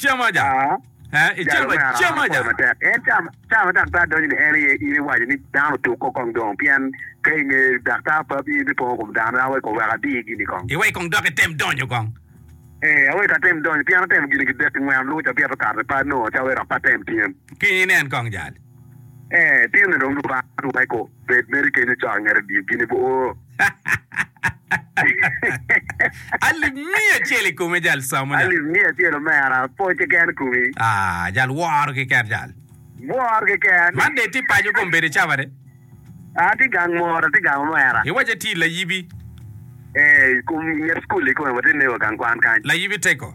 Jalo me arara me pwoyo matek. En cawa ma daktar donyo ni en aye, in iwaco ni dano otuk ko kong dong, pien ka inge daktar papi in bipongo kom dano. Awe kong wek adiyi gini kong. Iwe kong dok item donyo kong. Ee, awe ka atem donyo, pien atemo gin gidek ki ngwen, luca bito kare pat nongo ca awe dok pe atem tyem. Kiny inen kong jal. Ee, pien dong Lubanga Lweko bed mere kenyo co angera odiyo gin i bor. Alip miya acel i kome jal samo nya. Alip miya acel omera pwony keken komi. Aa, jal woro keken jal. Woro keken. Man de ti paco kom bede caba de. Aa, ti gang moro, ti gang omera. Iwaco atir layibi. Ee, i kom nget school i kome wati nego gang kwan kany. Layibi teko.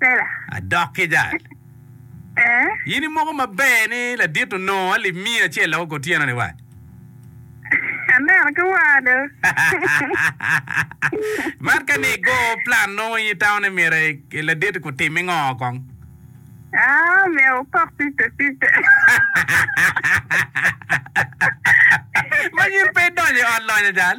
Sela. Adok ki jal. Ee. In imoko maber ni ladit onongo alip miya acel loko kor tyeno-ni wa? Aneno ki waa do. Man ka ni igo plan nongo in itamo myero ladit-ti kutimi ngo kong? Aa, myero wukok pice pice. Manyin pe idonyo i ot lonyo jal?